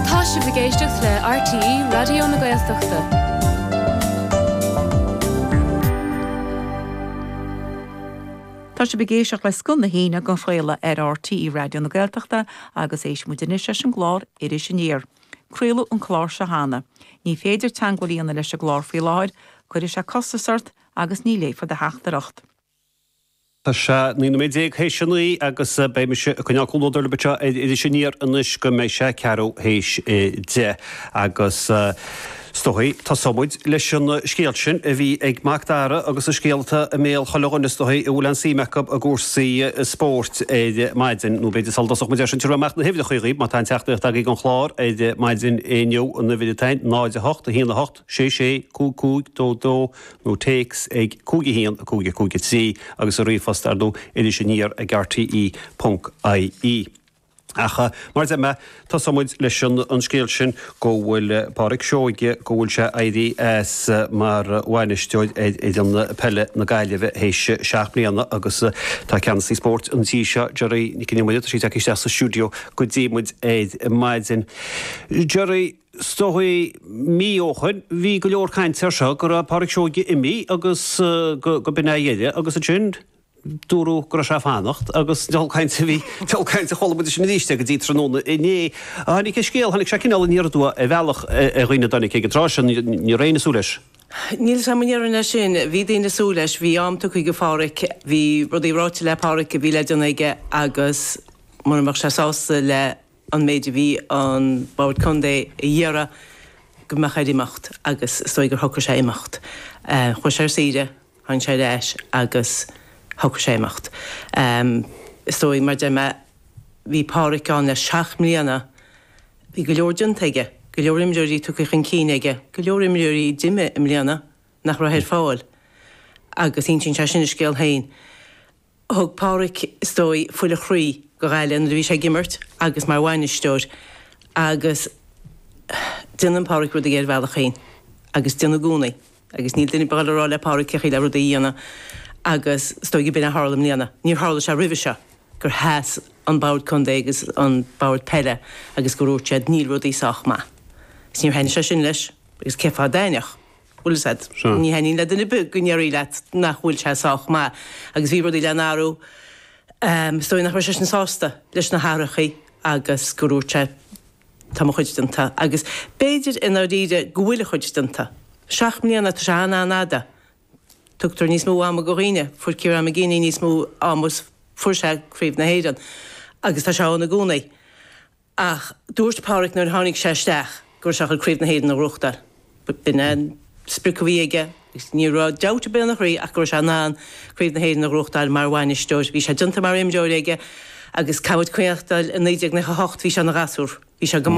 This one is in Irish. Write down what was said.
Tá sibh ag éisteacht le RTÉ Raidió na Gaeltachta. Tá sibh ag éisteacht le Scoth na hAoine á chraoladh ar RTÉ Raidió na Gaeltachta agus éistfidh muid anois leis an gclár Iris Aniar. Craoladh an clár seo cheana. Ní féidir teagmháil a dhéanamh leis an gclár faoi láthair, cuirfidh sé costas ort agus ní léifear do theachtaireacht. Tá sé naoi nóiméad déag théis a naoi agus beidh mise ag coinneáil comhluadar libh anseo ar Iris Aniar anois go mbeidh sé ceathrú théis a deich agus is dóigh tosóimid leis an scéal sin a bhí ag Mac Dara agus an scéal atá i mbéal chuile dhuine is dóigh a bhfuil an-suim acu i gcúrsaí spóirt ar maidin, nó b'fhéidir sula dtosóimid air sin tiubhrfaidh mé amach na huimhreacha dhaoibh má tá aon teachtaireacht agaibh don chlár ar maidin inniu, an uimhir atá ann, 0, 8, 1, 8. sé, sé, cúig cúig dó dó nó téacs ag cúig a haon a cúig a cúig a trí agus an ríomhphost ar ndóigh iris aniar ag rte ponc ie. Ach mar deir mé, tosóidh muid leis an scéal sin go bhfuil Pádraic Seoige, go bhfuil sé éirí as mar bhainisteoir ar fhoireann peile na Gaillimhe théis seacht mbliana agus tá ceannasaí spóirt an tí seo, Dearbhla Nic an Iomaire, tá sí ag teacht isteach sa stiúideo go dtí muid ar maidin. Dearbhla. is dóigh mí ó shin bhí go leor cainte ar seo go raibh Pádraic Seoige ag imeacht agus go b'in a dheireadh agus ansin dúradh go raibh sé a' fanacht agus diabhal caint a bhí diabhal caint chuala muid ansin aríst é go dtí tráthnóna inné a tháinig a' scéal tháinig sé cineál aniar aduaidh ar bhealach ar dhaoine gur tháinig ag an tráth sin ní raibh aon duine ag súil leis. Bhuel tá mé ag déanamh i ndeireadh ansin bhí daoine ag súil leis bhí am tugtha go Phádraic bhí rudaí ráite le Pádraic a bhí le déanamh aige agus mura mbeadh sé sásta le an méid a bhí an Bord Contae a iarraidh go mbeadh air imeacht agus is dóigh gur shocraigh sé imeacht. Chuaigh sé ar saoire, tháinig sé ar ais agus shocraigh sé imeacht. Is dóigh, mar deir mé, bhí Pádhraic ann le seacht mbliana, bhí go leor déanta aige, go leor imreoirí tugtha chun cinn aige, go leor imreoirí d'imigh i mbliana nach raibh ar fáil agus insíonn sé sin a scéal féin. Thug Pádhraic, is dóigh, fuil a chroí dho Ghaillimh nuair a bhí sé ag imirt agus mar bhainisteoir agus déanann Pádhraic rudaí ar a bhealach féin agus déanann i gcónaí agus níl duine ar bith le rá le Pádhraic cé chaoi le rudaí a dhéanamh agus is dóigh go b'in a tharla i mbliana. Níor tharla sé roimhe seo gur sheas an bord contae agus an bord peile agus gur úirt siad 'níl rudaí sách maith' agus níor thaitnigh sé sin leis agus cé fáth a dtaitneodh? Ní thaitneodh le duine ar bith go ndéarfaí leat nach bhfuil sé sách maith agus bhí rudaí le n-athrú. Is dóigh nach raibh seisean sásta leis na hathruithe agus gur úirt sé Tá mo chuid déanta agus b'fhéidir i ndáiríre go bhfuil a chuid déanta. Seacht mbliana, tá sé an-an-fhada. Tugtar níos mó ama go dhaoine. Fuair Ciarán McGeeney níos mó ama is fuair sé Craobh na hÉireann agus tá sé ann i gcónaí. Ach dúirt Pádraig nuair a tháinig sé isteach go raibh sé ag goil Craobh na hÉireann a ghnóthachtáil. B'in é an sprioc a bhí aige agus ní raibh dabht ar bith ina chroí ach go raibh sé in ann Craobh na hÉireann a ghnóthachtáil mar bhainisteoir. Bhí sé déanta mar imreoir aige agus caithfidh muid cuimhneachtáil i 1998 bhí sé ina ghasúr. Bhí sé go.